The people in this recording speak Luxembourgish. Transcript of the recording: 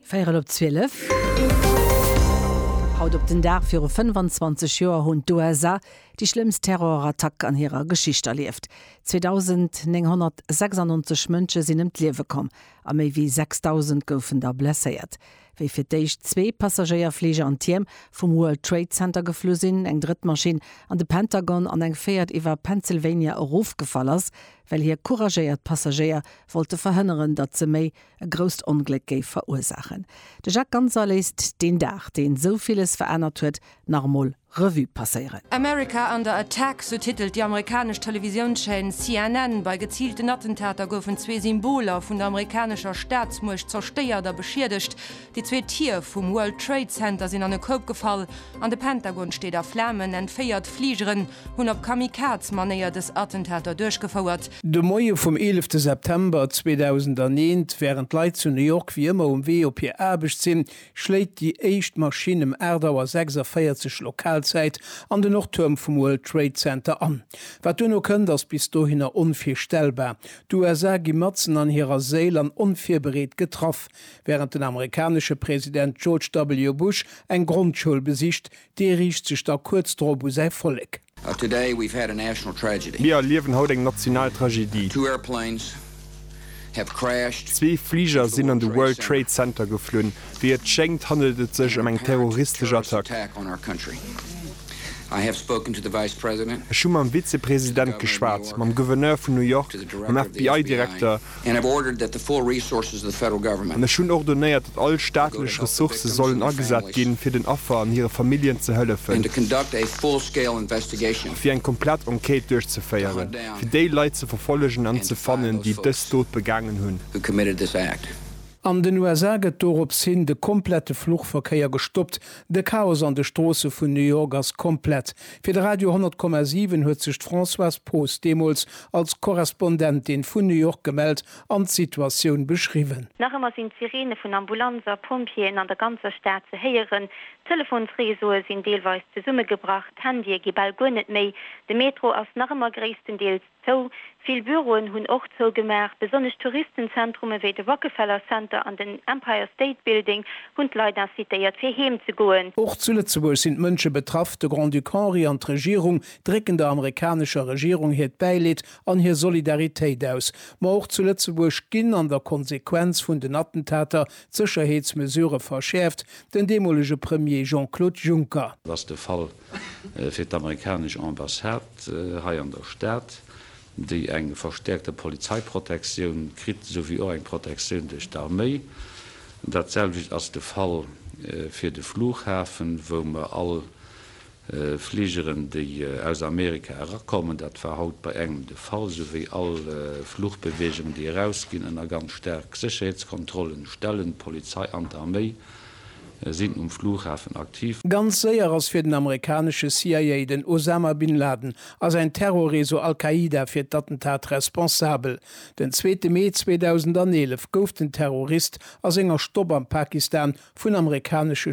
Véierel op zwielef. Haut op den Dag viru 25 Joer hunn d'USA déi schlëmmst Terrorattack an hirer Geschicht erlieft. 2.996 Mënsche sinn ëm d'Liewe komm a méi wéi 6.000 goufen da blesséiert, wéi fir d'éischt zwee Passagéierfliger an d'Tierm vum World Trade Center geflu sinn, eng drëtt Maschinn an de Pentagon an eng véiert iwwer Pennsylvania erofgefall ass, well hie couragéiert Passagéier wollte verhënneren, datt se méi e grousst Ongléck géif verursaachen. De Jacques Ganser léisst deen Dag, deen esou villes verännert huet, nach emol Revue passéieren. America under attack, sou titelt déi amerikanesch Televisiounschaîne CNN. Bei geziilten Attentater goufen zwee Symboler vun der amerikanescher Staatsmuecht zerstéiert a beschiedegt. Déi zwee Tier vum World Trade Center sinn an e Koup gefall an de Pentagon steet a Flamen. Enn 4 Fligeren hunn op Kamikaze-Manéier dës Attentater duerchgefouert. De Moie vum 11 September 2001, wärend d'Leit zu New York wéi ëmmer um Wee op hir Aarbecht sinn, schléit déi éischt Maschinn ëm 8 Auer 46 Lokalzäit an de Nordtuerm vum World Trade Center an. Wat duerno kënnt, ass bis dohinner onvirstellbar. D'USA gi matzen an hirer Séil an onvirbereet getraff. Wärend den amerikanesche President George W. Bush eng Grondschoul besicht, dee riicht sech da kuerz drop u säi Vollek. Mir erliewen haut eng national Tragedie. Zwee Fliger sinn an de World Trade Center geflunn. Wéi et schéngt, handelt et sech ëm eng terroristesch Attack. Ech hu mam Vizepresident geschwat, mam Gouverneur vun New York, mam FBI-Direkter And have ordered that the full resources of the Federal Government. An ech hunn ordonéiert, datt all staatlech Ressourcë sollen agesat ginn, fir den Affer an hire Familljen ze hëllefen. And to conduct a full-scale investigation. A fir eng komplett Enquête duerchzeféiere fir déi Leit ze verfollegen an ze fannen, déi dës Dot begaangen hunn. Who committed this act. An den USA gëtt doropshin de komplette Fluchverkéier gestoppt, De Chaos an de Stroosse vun New York ass komplett. Fir de Radio 100,7 huet sech d'Françoise Poos deemools als Korrespondentin vun New York gemellt an d'Situatioun beschriwwen. Nach ëmmer sinn d'Sireene vun Ambulanzer, Pompjeeën an der ganzer Stad ze héieren. D'Telefonsreseaue sinn deelweis zesummegebrach, d'Handye gi bal guer net méi. De Metro ass nach ëmmer gréisstendeels. Zou. Vill Büroen hunn och zougemaach. Besonnesch Touristenzentrume wéi de Rockefeller Center an den Empire State Building hunn d'Leit incitéiert, fir heem ze goen. Och zu Lëtzebuerg sinn d'Mënsche betraff. De Grand-Duc Henri an d'Regierung drécken der amerikanescher Regierung hiert Bäileed an hir Solidaritéit aus. Ma och zu Lëtzebuerg ginn an der Konsequenz vun den Attentater d'Sécherheetsmesurë verschäerft. Den deemolege Premier Jean-Claude Juncker. Ass de Fall fir d'amerikanesch Ambassade hei an der Stad, déi eng verstäerkte Polizeiprotektioun kritt, esouwéi och eng Protektioun duerch d'Arméi. Dat selwecht ass de Fall fir de Flughafen, wou mer all Fligeren, déi aus Amerika erakommen, dat war haut bei engem de Fall, esouwéi all Fluchbeweegungen, déi erausginn, ënner ganz staark Sécherheetskontrollen stellen, d'Polizei an d'Arméi. sinn um Flughafen aktiv. Ganz séier ass fir den amerikanesche CIA, den Osama Bin Laden a säin Terrorreseau Al-Qaida fir d'Attentat responsabel. Den zweete Mee 2011 gouf den Terrorist a senger Stopp am Pakistan vun amerikanesche.